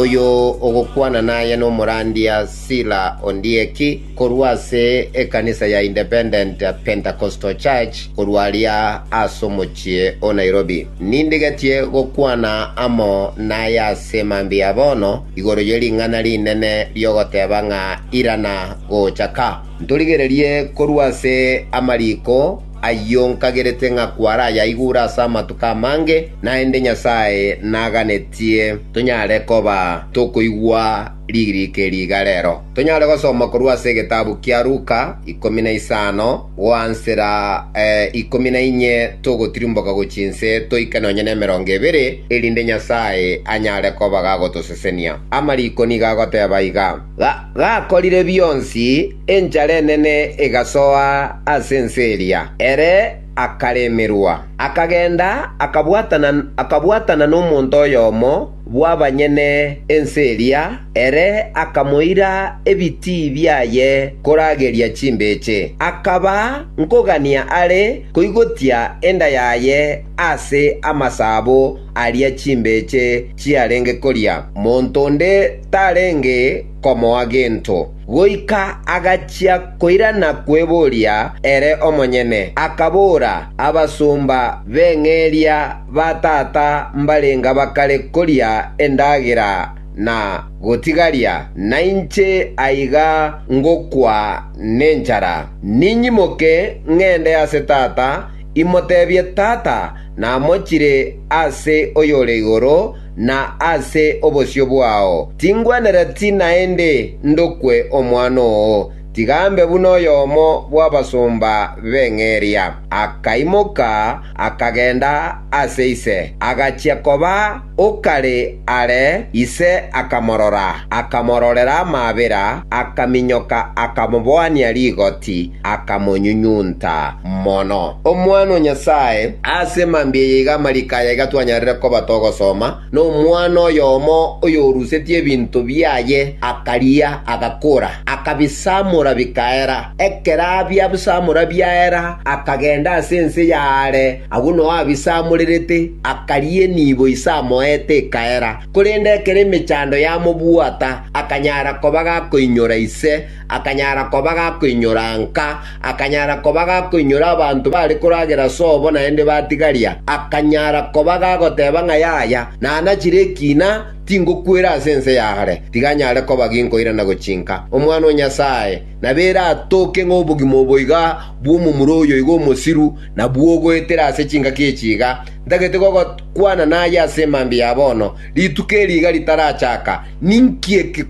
Oyo ogokwana naye nomorandia Sila Ondieki, korwa ase ekanisa ya Independent Pentecostal Church korwa aria ase omochie o Nairobi. Nindigetie gokwana amo naye ase mambia ya bono igoro ye ring'ana rinene ri'ogoteba ng'a irana gocha ka. Ntorigererie korwa ase amariko. Ayio nkagerete ng'a kwarayaigure ase amatuko amange, naende Nyasae naganetie tonyare koba tokoigwa ririko eri iga rero. Tonyare gosoma korwa ase egetabu kia Luka, ikomi na isano, goansera ikomi na inye togotirimboka gochia inse toike nonye nemerongo ebere, erinde Nyasae anyare koba gagotosesenia. Amariko nigo agoteba iga. Gakorire bionsi, enchara enene egasoa ase ense eria, ere akaremerwa. Akagenda akabwatana nomonto oyomo bw'abanyene ense eria, ere akamoira ebitii biaye korageria chimbeche. Akaba nkogania are koigotia enda yaye ase amasabo, aria chimbeche chiarenge koria, monto onde tarenge komoa gento, goika agachia koirana kweboria ere omonyene, akabora, Abasomba b'eng'eria ba tata mbarenga bakare koria endagera na gotigaria, nainche aiga ngokwa nenchara. Ninyimoke ng'ende ase tata, imotebie, Tata, Namochire ase oyore igoro, na ase obosio bwao. Tingwenereti naende ndokwe omwana oo, tiga ambe buna oyomo bw'abasomba b'eng'eria. Akaimoka, akagenda ase ise, agachia koba. Okare are ise akamorora, akamororera amaabera, akaminyoka, akamoboania rigoti, akamonyunyunta mono. Omwana o Nyasae ase mambia eye iga amariko aya iga twanyarire koba togosoma, Nomwana oyomo oyorusetie ebinto biaye akaria, agakora, akabisamora bikaera. Ekero abiabsamora biaera, akagenda ase ense y'aare, Agwo Noa ise amorerete, akariina ibo ise amoete ekaera, korende ekero emechando yamobwata, akanyara koba gakoinyora ise, akanyara koba gakoinyora nka, akanyara koba gakoinyora abanto bare koragera sobo naende batigaria, akanyara koba gagoteba ng'a yaya, nanachire ekina, tingokwera ase ense yare, tiga nyare koba ginkoira na gochinka Omwana o Nyasae, na bera atoke ng'a obogima obo iga bw'omomura oyo iga omosiru, Nabwo ogoetera ase chingaki echi iga, ntagete gogokwana naye ase emambia ya bono, rituko eri iga ritarachaka, ninki eke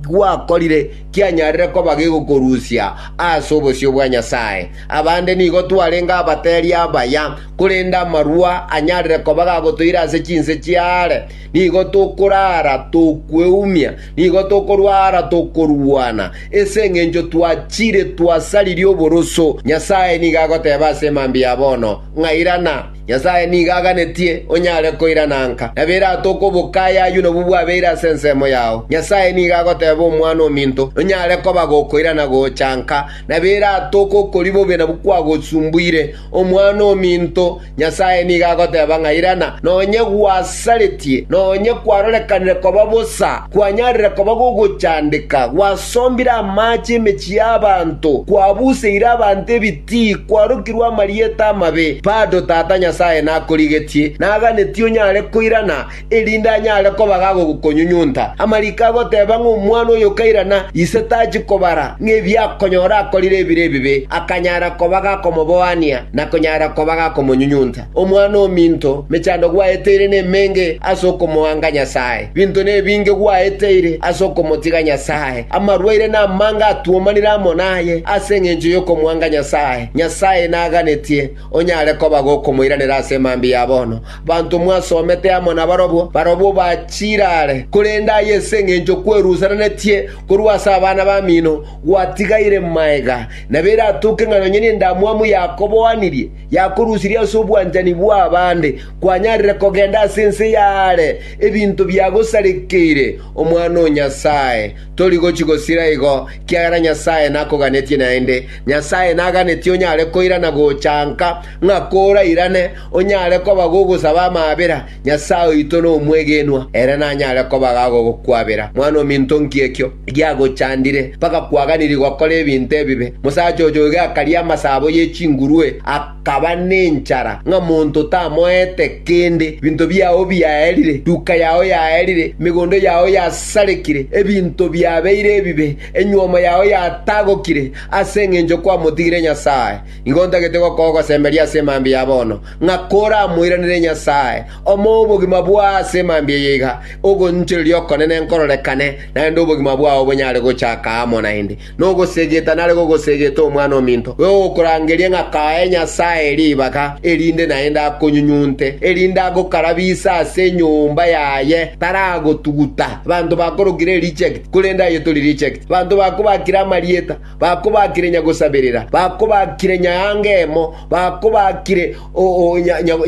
gwakorire kianyarire koba gegokorusia ase obosio bwa Nyasae? Abande nigo twarenge abateri abaya, korende amarua anyarire koba gagotoira ase chinse chiaare, nigo tokorara tokweumia, Nigo tokorwa ara tokorwana, ase engencho twachire twasaririe oboroso. Nyasae nigo agoteba ase mambia ya bono, ng'a irana. Nyasae nigo aganetie onyare koirana nka, na berato okoboka ayaywo nabwo bwabeire ase ensemo yao. Nyasae nigo agoteba Omwana o minto, nonyare koba gokoirana gocha nka, na berato okokori bobe nabwo kwagosumbuire. Omwana-o-minto, Nyasae nigo agoteba ng'a irana, nonye gwasaretie, nonye kwarorekanire koba bosa, kwanyarire koba gogochandeka, gwasombire amaache emechie y'abanto, kwabuseire abanto ebitii, kwarokirwe amarieta amabe, bado Tata Nyasae nakorigetie, naganetie onyare koirana, erinde anyare koba gagokonyunyunta amariko agoteeba ng'a omwana oyo okairana ise tachi kobara ng'a ebiakonyora akorire ebire ebibe, akanyara koba gakomoboania na konyara koba gakomonyunyunta. Omwana ominto, mechando gwaeteire nemenge ase okomoanga Nyasae. Binto nebinge gwaeteire ase okomotiga Nyasae. Amarwaire namange atwomanire amo naye ase engencho yokomoanga Nyasae. Nyasae naganetie onyare koba gokomoiranera ase emambia ya bono. Abanto mwasomete amo nabarabwo, barabwo bachirare, korende aye ase engencho kwerusananetie korwa ase abana bamino, gwatigaire maega. Nabo eratoke ng'a nonya nendamwamu yakoboanirie, yakorusirie ase obwanchani bw'abande, kwanyarire kogenda ase ense y'aare ebinto biagosarekeire omwana o Nyasae. Tori gochia gosira igo, ekiagera Nyasae nakoganetie naende. Nyasae naganetie onyare koirana gocha nka. ng'a korairane onyare koba gogosaba amaabera Nyasae oito nomwegenwa, ere nanyare koba gagogokwabera. Mwan'ominto, nki ekio giagochandire mpaka kwaganirie gokora ebinto ebibe? Mosacha oyo iga akaria amasabo ye chingurue, akaba nenchara, ng'a monto tamoete kende, ebinto biao biaerire, duka yao yaerire, emegondo yao yasarekire, ebinto biabeire ebibe, enyuomo yao yatagokire, ase engencho kwamotigire Nyasae. Nigo ntagete gokogwa ogosemberia ase emambia ya bono, ng'a koramoiranere Nyasae, omoe obogima bwao ase emambia eye iga, ogoinchoreria okonene nkororekane, naende obogima bwao bonyare gochaka amo naende. Nogosegeta nare gogosegete omwana ominto, bwegokorangeria ng'a kae Nyasae ribaga, erinde naende akonyunyunte, erinde agokarabise ase enyomba yaye, taragotuguta. Abanto bakorokire reject, korende aye tori reject. Abanto bakobakire amarieta, Bakobaakire nyagosaberera, bakobaakire nyaangemo, bakobaakire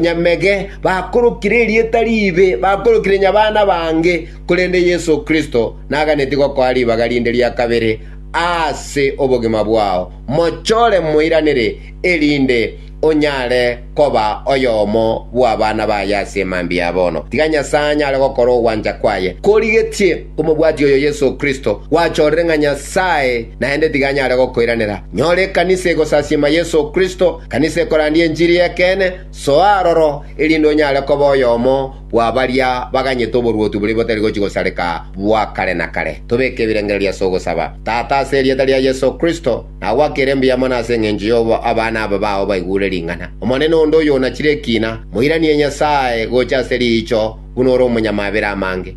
nyamege, bakorokire erieta riibe, bakorokire nyabana bange, korende Yeso Kristo naganetie gokoa ribaga rinde ria kabere ase obogima bwao, mochore moiranere, erinde onyare koba oyomo bw'abana baye ase mambia ya bono. Tiga Nyasae anyare gokora ogwancha kwaye korigetie komobwati oyo Yeso Kristo gwachorire ng'a Nyasae naende tiga anyare gokoiranera. Nyora ekanisa egosasiima Yeso Kristo, ekanisa ekorandia enchiri y'ekeene, soa aroro, erinde onyare koba oyomo bwa baria baganyete oboruoti boria botari gochia gosareka bwa kare na kare. Tobeke ebirengererio ase ogosaba. Tata, ase erieta ria Yeso Kristo. na gwakere mbuya mono ase engencho y'obo abana aba bao baigure ring'ana. Omonene onde oyonachire ekina, moiranie Nyasae gocha ase riicho buna ore omonyamabera amange.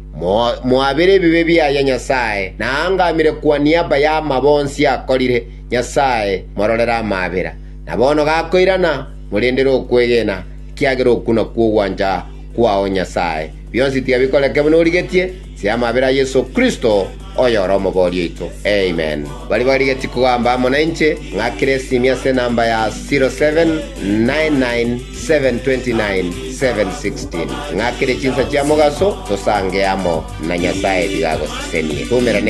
Moabere ebibe biaye Nyasae, na aangamire kwa niaba y'amabo onsi akorire, Nyasae, mororere amabera. Na bono gakoirana, morendere okwegena, ekiagera oku nakwo ogwancha kwao Nyasae. Bionsi tiabikoreke buna origetie, ase amabera a Yeso Kristo, oyore Omobori oito. Amen. Baria barigetie kogamba amo nainche, ng'akere esimi ase enamba ya 0799729716. Ng'akere chinsa chia mogaso, tosange amo na Nyasae biga agosesenie. Tomerane.